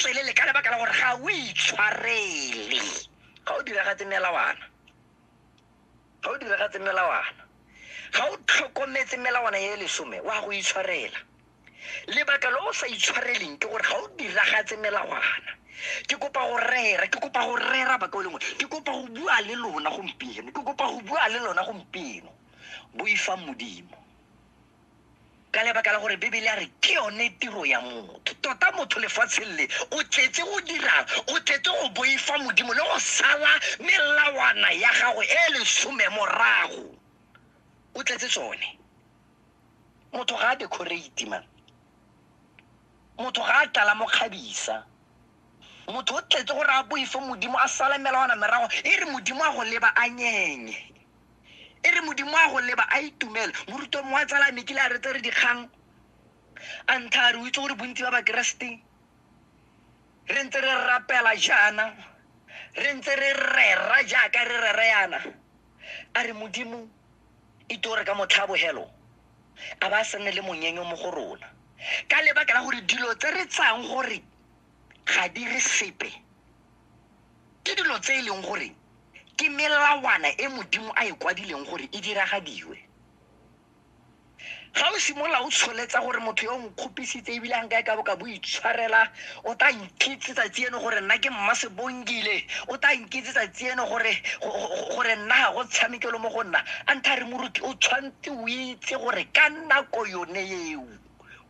tswelele ka lebaka la gore ga o itshwarele ga o diragatse melawana ga o diragatse melawana ga o tlhokometse melawana ya lesome wa go itshwarela lebaka lo o sa itshwareleng ke gore ga o diragatse melawana ke kopa go rera ke kopa go rera baka o lengwe ke kopa go bua le lona gompieno ke kopa go bua le lona gompieno boifang modimo ka lebaka la gore bebele a re ke yone tiro ya motho tota motho lefatsheng le o tletse go dirang o tletse go boifa modimo le go sala melawana ya gago e e lesome morago o tletse tsone motho ga a decorate man motho ga a tlala mo kgabisa motho o tletse gore a boife modimo a sala melawana merago e re modimo a go leba a nyenye e re modimo a go leba a itumela moruto mongwe a tsala a mekile a re tse re dikgang a nthare o itse gore bontsi ba bakeresete re ntse re rapela jaana re ntse re rera jaaka re rera yana a re modimo e to re ka motlhabogelo a ba a se nne le monyenyo mo go rona ka lebaka la gore dilo tse re tsayang gore ga di re sepe Ke dilo tse e leng gore ke melawana e Modimo a e kwadileng gore e diragadiwe. Ga o simolola o tsholetsa gore motho yo o nkgopisitse ebile a nka e ka bo ka bo itshwarela o tla nkitse tsatsi eno gore nna ke mma sebongile o tla nkitse tsatsi eno gore go- go- gore nna ga go tshamekelo mo go nna a ntha re moruti o tshwanetse o itse gore ka nako yone eo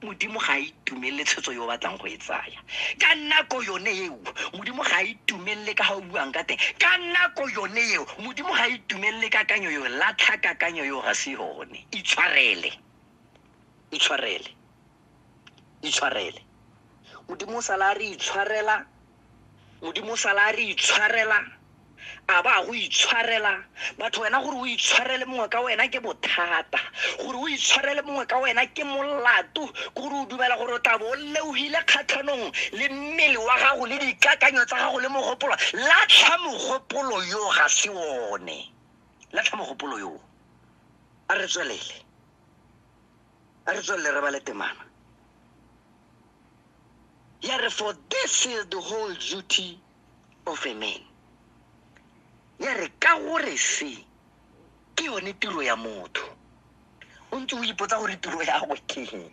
modimo ga a itumelele tshwetso yo o batlang go e tsaya ka nako yone eo modimo ga a itumelele ka ga o buang ka teng ka nako yone eo modimo ga a itumelele kakanyo eo latlha kakanyo eo ga se yone itshwarele itshwarele itshwarele modimo o sala a re itshwarela modimo sala a re itshwarela a ba go itshwarela batho wena gore o itshwarele mongwe ka wena ke bothata gore o itshwarele mongwe ka wena ke molato ke gore o dumela gore o tla bo o leogile kgatlhanong le mmele wa gago le dikakanyo tsa gago le mogopolo latlha mogopolo yo ga se one latlha mogopolo yo a re tswelele a re tswelele re ba le temana ya re for this is the whole duty of a man ya re ka gore se ke yone tiro ya motho o ntse o ipotsa gore tiro ya go keng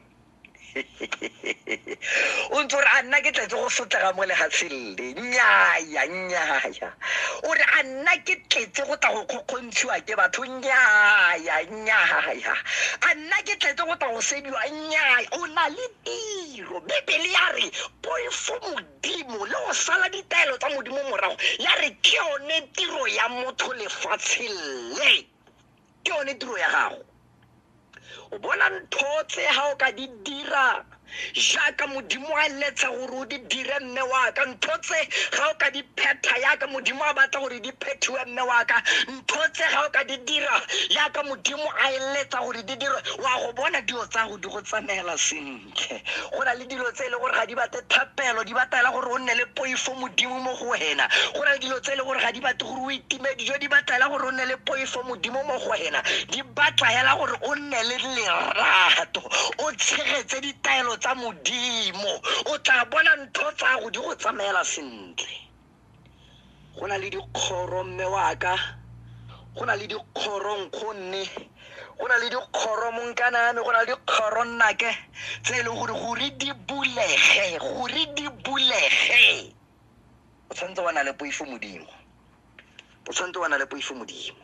o ntse ore a nna ke tletse go sotlega mo legatsheng le nyaya nyaya o re a nna ke tletse go tla go kgokgontshiwa ke batho nyaya nyaya a nna ke tletse go tla go sediwa nyaya o na le tiro tiro bibele ya re poifo modimo le go sala ditaelo tsa modimo morago ya re ke yone tiro ya motho lefatsheng le ke yone tiro ya gago o bona ntho tse ga o ka di dira jaaka modimo a letsa gore o di dire mme waka ntho tse ga o ka di phetha yaka modimo a batla gore di phethiwe mme waka ntho tse ga o ka di dira yaka modimo a eletsa gore di dirwe wa go bona dilo tsa go di go tsamaela sentle go na le dilo tse e le gore ga di bate thapelo di batela gore o nne le poifo modimo mo go wena go na le dilo tse e le gore ga di bate gore o itime dijo di batela gore o nne le poifo modimo mo go wena di batla hela gore o nne le lerato o tshegetse ditaelo tsa modimo o tla bona ntho tsa go di go tsamaela sentle go na le dikgoro mme waka go na le dikgoro nkgonne go na le dikgoro monkaname go na le dikgoro nnake tse e leng gore gore di bulege gore di bulege o tshwanetse wa na le poifo modimo o tshwanetse wa na le poifo modimo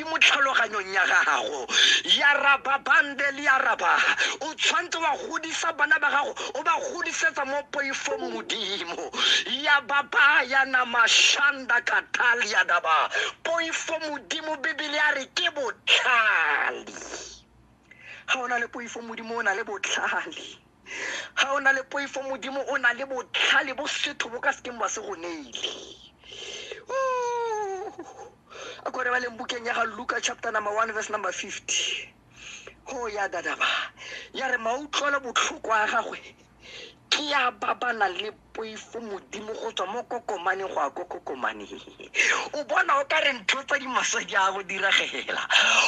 di mo tlhaloganyong ya gago ya rababande le ya raba o tshwanetse wa godisa bana ba gago o ba godisetsa mo poifong modimo ya baba ya namashanda katalia daba poifo modimo bibele ya re ke botlhale ga o na le poifo modimo o na le botlhale ga o na le poifo modimo o na le botlhale bo setho bo ka sekeng ba se go neile a kore ba leng bukeng ya ga luka chapter number one verse number fifty go ya dadaba ya re mautlwelo botlhoko a gagwe ke ya ba ba nang le poifo modimo go tswa mo kokomane go ya ko kokomane o bona o ka re ntho tsa dimaswe di a go diragela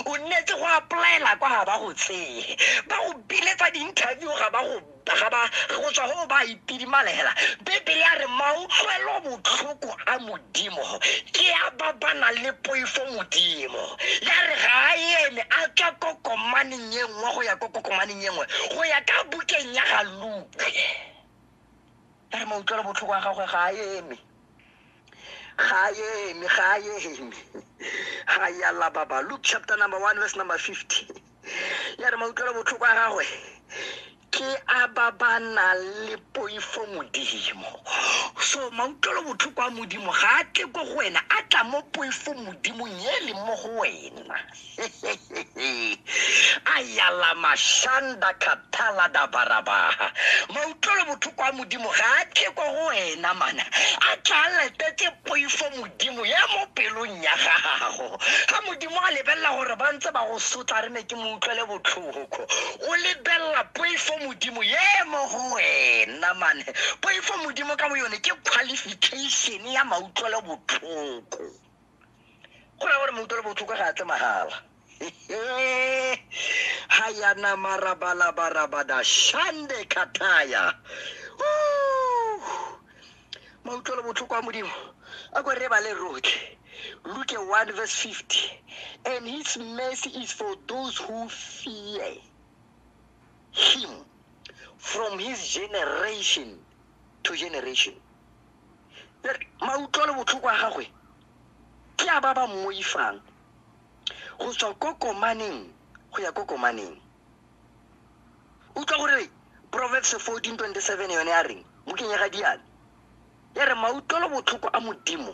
o nnetse go applyela kwa ga ba go tseye ba go biletsa di-interview ga ba go ga ba go tswa go ba itidimalela bebele ya re mautlwelo botlhoko a modimo ke a ba ba nang le poifo modimo ya re ga a eme a tswa ko komaneng e nngwe go ya ko kokomaneng e nngwe go ya ka bukeng ya ga luke a re mautlwelo botlhoko a gagwe ga a eme ga a eme ga a eme ga ya lababa luke chapter number one verse number fifty ya re mautlwelo botlhoko a gagwe ke a ba ba nang le poifo modimo so mautlwelo botlhoko a modimo ga a tle ko go wena a tla mo poifo modimong e leng mo go wena ayala mashanda khathala da barabaha mautlwelo botlhoko a modimo ga a tle ko go wena mana a tla letetse poifo modimo ya mo pelong ya gago ga modimo a lebelela gore ba ntse ba go sotla re ne ke mo utlwele botlhoko o lebelela poifo modimo ye mo go wena mane poifo modimo ka bo yone ke qualification ya mautlwelo botlhoko go raya gore mo utlwele botlhoko ga a tle magala ha ya nama rabalabarabada shande kataya mo utlwele botlhoko wa modimo a ko re ba le rotlhe Luke 1 verse 50 and his mercy is for those who fear him from his generation to generation mautlwelo botlhoko a gagwe ke a ba ba mmoifang go tswa ko komaneng go ya ko komaneng utlwa gore proverbs 14 27 yone ya reng mo kenyega diane ya re mautlwelo botlhoko a modimo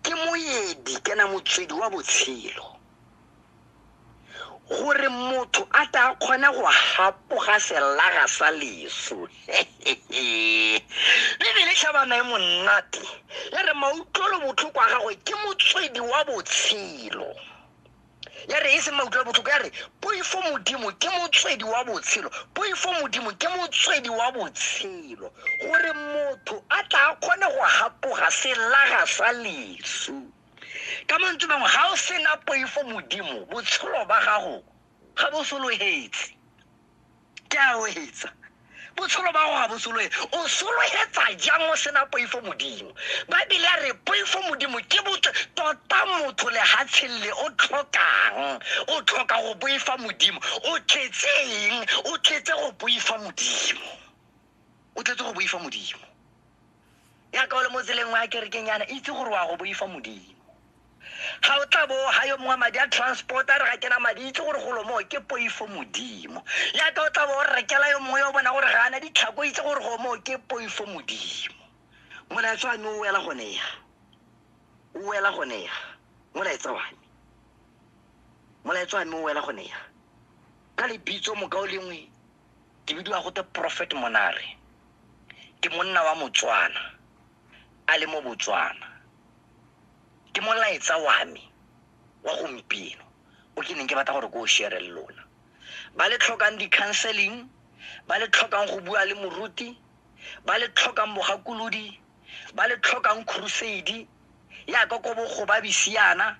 ke moedi kana motswedi wa botshelo gore motho a tla a kgone go gapoga selaga sa leso bebele tlhabana e monate ya re mautlwelo botlhoko a gagwe ke motswedi wa botshelo ya re e se mautlwelo botlhoko ya re poifo modimo ke motswedi wa botshelo poifo modimo ke motswedi wa botshelo gore motho a tla a kgone go gapoga selaga sa leso ka mantswe mangwe ga o sena poifo modimo botshelo ba gago ga bo sologetse ke a o etsa botshelo ba go ga bo soloe o sologetsa jang o sena poifo modimo baebele a re poifo modimo ke botse tota motho legatsheng le o tlhokang o tlhoka go boifa modimo o tletse eng o tletse go boifa modimo o tletse go boifa modimo ya kaolo mo tseleng wa kerekeng yana itse gore wa go boifa modimo ga o tla bo ga yo mongwe madi a transport a re ga kena madi itse gore golo moo ke poifo modimo ya ka o tla bo o rekela yo mongwe yo bona gore ga ana ditlhako itse gore go moo ke poifo modimo molaetsa wa me o wela gone ya o wela gone ya molaetsa wa me molaetsa wa me o wela gone ya ka lebitso moka o lengwe ke bidiwa go te prophet monare ke monna wa motswana a le mo botswana ke molaetsa wa me wa gompieno o ke neng ke batla gore ko o share le lona ba le tlhokang di-counseling ba le tlhokang go bua le moruti ba le tlhokang bogakolodi ba le tlhokang crusade yaka ko bogobabisiana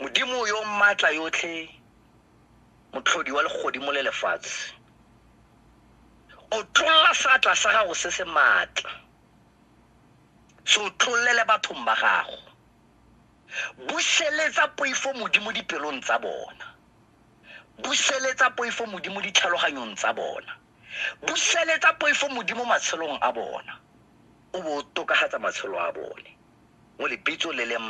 Modimo yo maatla yotlhe, motlhodi wa legodimo le lefatshe, o tlolla seatla sa gago se se maatla se o tlollele bathong ba gago buseletsa poifo modimo dipelong tsa bona buseletsa poifo modimo ditlhaloganyong tsa bona buseletsa poifo modimo matshelong a bona o bo o tokagatsa matshelo a bone mo lebitso le le